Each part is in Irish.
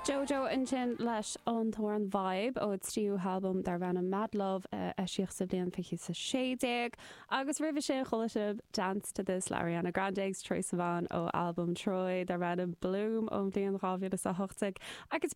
JoJo ansin leis an amhrán Vibe ó a tríú halbam darb ainm Mad Love a eisíodh sa bhliain 2016 agus roimhe sin chuala sibh Dance To This le Ariana Grande agus Troye Sivan ó albam Troye darb ainm Bloom ón bhliain 2018 agus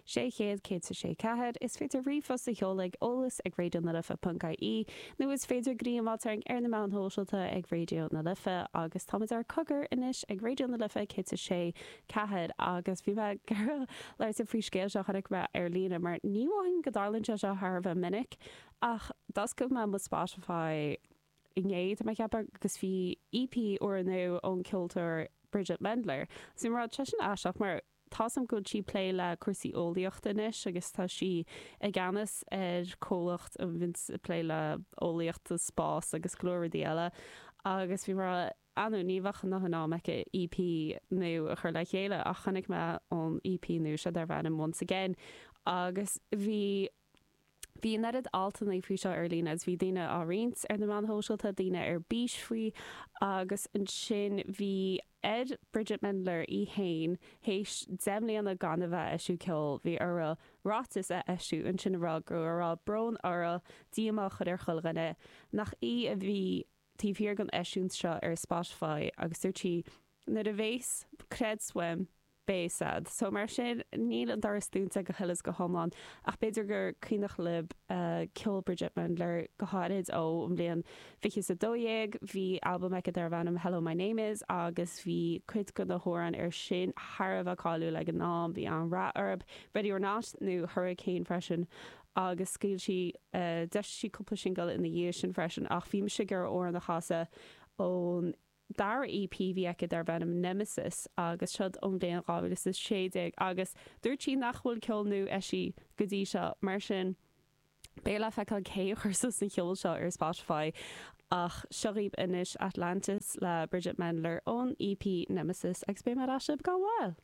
600 106 4 is féidir ríomhphost a sheoladh ag eolas ag Raidió na Life ponc IE nó is féidir dul i dteagmháil linn ar na meáin shóisialta ag Raidió na Life agus táimid ar Cogar anois ag Raidió na Life 106 4 agus bhí mé ag iarraidh labhairt faoi scéal seo chonaic mé ar líne mar ní mhothaím go dtarlaíonn sé seo thar a bheith minic ach d'oscail mé mo Spotify inné de mo cheapadh agus bhí EP úrnua ón ceoltóir Bridgit Mendler so bhraith sé sin aisteach mar Tá a fhios agam go bhfuil sí ag plé le cúrsaí eolaíochta anois agus tá sí i gceannas ar comhlacht a bhíonns ag plé le eolaíocht agus spás agus go leor rudaí eile agus bhí mé ag smaoineamh nach bhfuil an t-am aici EP nua a chur le chéile ach chonaic mé an EP nua seo darb ainm Once Again agus bhí Bhí an oiread altannaí faoi seo ar líne agus bhí daoine á roinnt ar na meáin shóisialta, daoine ar bís faoi agus ansin bhí ar Bridgit Mendler í fhéin théis deich mbliana gan a bheith ag eisiúint ceol, bhí uirthi ráiteas a eisiúint ansin a rá go raibh go raibh brón uirthi, díomá a chur ar chuile dhuine nach í a bhí taobh thiar den eisiúint seo ar Spotify agus dúirt sí nuair a bheas, creid uaim, beidh a fhios agaibh. So mar sin níl an doras dúnta go huile 's go hiomlán ach b'fhéidir gur cuimhneach lib ceol Bridgit Mendler go háirid ó an bhliain fiche 's a dó dhéag. Bhí albam aici darbh ainm Hello My Name Is agus bhí cuid de na hamhráin ar sin thar a bheith cáiliúil ag an am. Bhí an-rath orb, Ready Or Not nó Hurricane freisin agus scaoil sí, d'eisigh sí cúpla singil ina dhiaidh sin freisin ach bhí mise ag iarraidh amhrán a chasadh ón. dara EP bhí aici darb ainm Nemesis agus siod ón bhliain 2016 agus dúirt sí nach bhfuil ceol nua eisithe go dtí seo mar sin beidh le feiceáil cé a chuir suas an ceol seo ar Spotify ach seo dhaoib anois Atlantis le Bridgit Mendler ón EP Nemesis agus beidh mé ar ais libh gan mhoill.